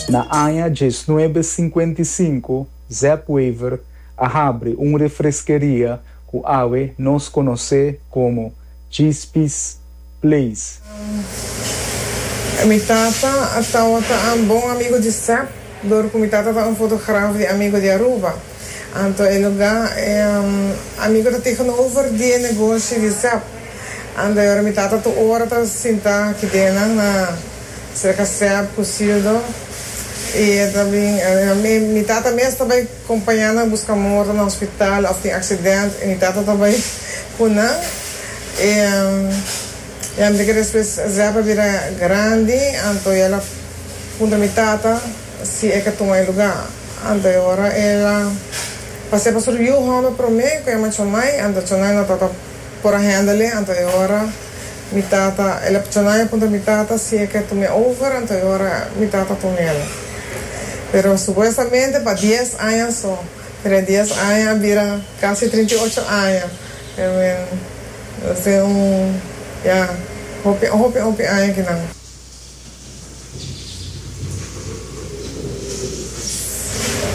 Na aña diesnuebe sinkuenta i sinku, Zep Wever a habri un refreskeria ku awe nos konosé komo Gispi's Place. Mi tata a tawata un bon amigu di Zep, dor ku mi tata ta un fotograf di amigu di Aruba. Anto e lugá e amigo ta tegenover di e negoshi di Zep. Anto e ora mi tata tur ora ta sintá kidenan na serka Zep ku Sildo i e ta bin mi tata mes ta bai kompañá nan buska morto na hospital òf tin aksident i mi tata ta bai ku nan. E yam'e ke despues Zep a bira grandi anto el a puntra mi tata. Si e ka tuma e lugá, anto e ora e la pa sepa sur yu hòmber promé ku e machomai, anto chonai no ta ta por a hèndel e, anto e ora mi tata, e la chonai a punta mi tata si e ke tum'é over, anto e ora mi tata tum'el. Pero supuestamente pa dies aña so, pero e dies aña a bira kasi trinta i ocho aña, I mean, lo sin un, ya, hopi, hopi, hopi aña kinan.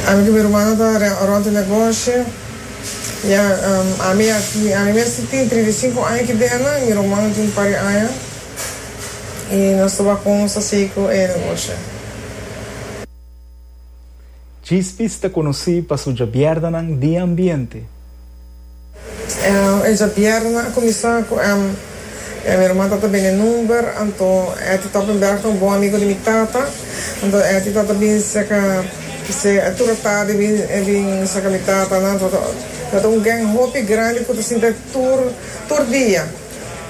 Ami ku mi rumannan ta rònt e negoshi i ami a ami mes tin trinta i sinku aña ki dena i mi ruman tin par di aña i nos tabata konsa sigui ku e negoshi. Chispis ta konosí pa su djabièrnanan di ambiente. E djabièrna a kuminsá ku èm. E mi erman tata bini number, anto Etty Toppenberg ta un bon amigu di mi tata. Anto Etty tata bin seka p'esei a tur atardi e bin e bin seka mi tata nan. Tata tata un gèn hopi grandi ku ta sinta e tur tur dia.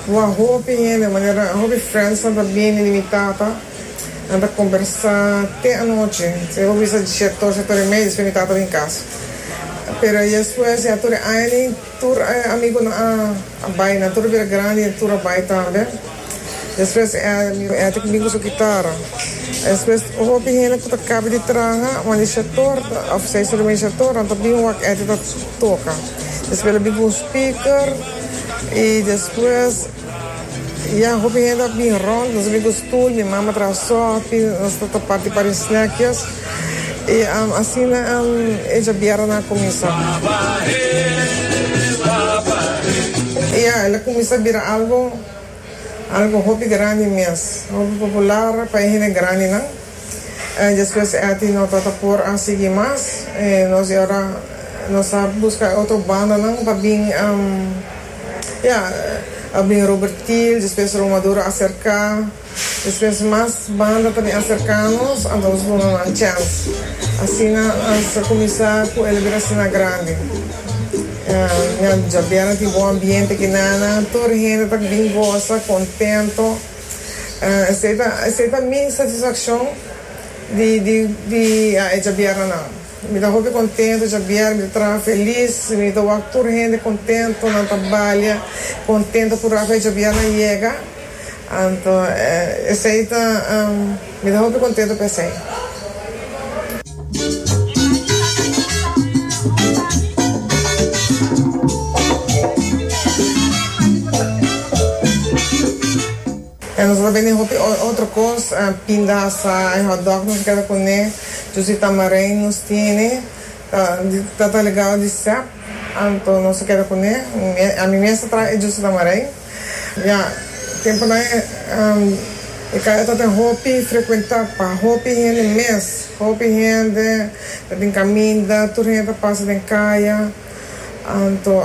Wou a hopi hende manera hopi friends nan ta bini di mi tata. Nan ta kombersá te anochi. Si bo bisa dicierto si a tur e mei despues mi tata bin kas. Pero ya despues, ya tur e aña ni tur e amigunan a a bai. Nan tur a bira grandi y tur a bai tambe. Despues e e tin ku bin ku su gitara. Despues hopi hende ku ta kaba di traha wan di shètor òf sa e solo den shètor nan ta bin wak e tin ta toka. Despues lo bin ku un speaker y despues. Ya hopi hende a bin rond, nos a bin ku stul, mi mama traha sòfi, nos ta tapa di parin snèkjes i asina e djabieranan a kuminsá. Ya el a kuminsá bira algu algu hopi grandi mes, hopi popular pa e hende grandinan. Despues Eti no ta ta por a sigui mas, nos e ora nos a buska e otro bandanan pa bin. A bin Robert Kiel, despues Roma Dor a aserká, despues mas banda ta bin aserká nos, anto nos duna nan chèns. Asina nos a kuminsá ku elebrason na grandi. Ña dja bèra tin bon ambiente kinana, tur hende ta bin gosa, kontento. Esei ta esei ta mi satisfakshon di di di a e dja bèra nan. Mi ta hopi contento djabier, mi ta traha feliz, mi ta wak tur hende contento, nan ta balia contento cu Rafael djabier na yega, anto esey ta mi ta hopi contento pa esey. E nos lo bende hopi otro cos, pindaza, e hot dog nos keda cune, dus di tamarind nos tiene, ta di tata legado di sep, anto nos a keda cune, ami mes a traha e jus di tamarind, ya temponan e caya ta tin hopi frecuenta pa hopi hende mes, hopi hende ta tin caminda, tur hende ta pasa den caya. Anto,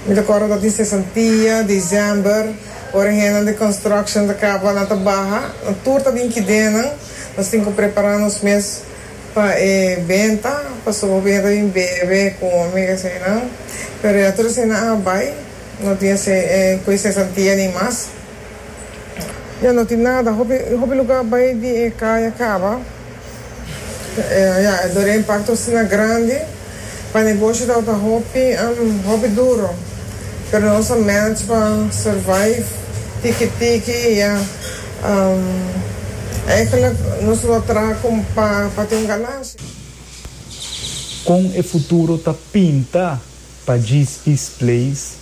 mi ta kòrda ta tin sesantia, December, ora hennan di construction ta kaba, nan ta baha, nan tur ta bin kidennan, nos tin ku prepará nos mes pa e benta, pasobra hopi hende ta bin bebe, kome, ke aseinan. Pero ya tur eseinan a bai, no tin esei ku e sesantia ni mas. Ya no tin nada. Hopi hopi lugar bay di e caya caba. Ya e doren parti osina grandi. Pa negoshi tabo ta hopi hopi duro. Pero nos a manage pa survive tiki tiki ya. Eigenlijk nos lo a traha con pa tin un ganancia. Con e futuro ta pinta? pa Gispis Place.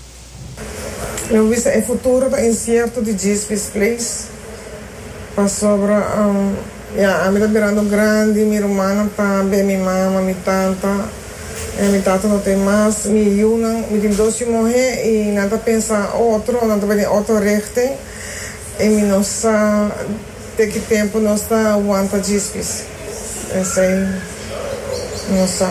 Lo bisa e futuro ta incierto di Gispis Place pasobra ya ami ta birando grandi, mi rumannan ta ben mi mama, mi tanta y mi tata no ta ey mas, mi yunan, mi tin dos yu muhe y nan ta pensa otro, nan ta bai den otro richting y mi no sa te ki tempo nos ta wanta Gispis, esey mi no sa.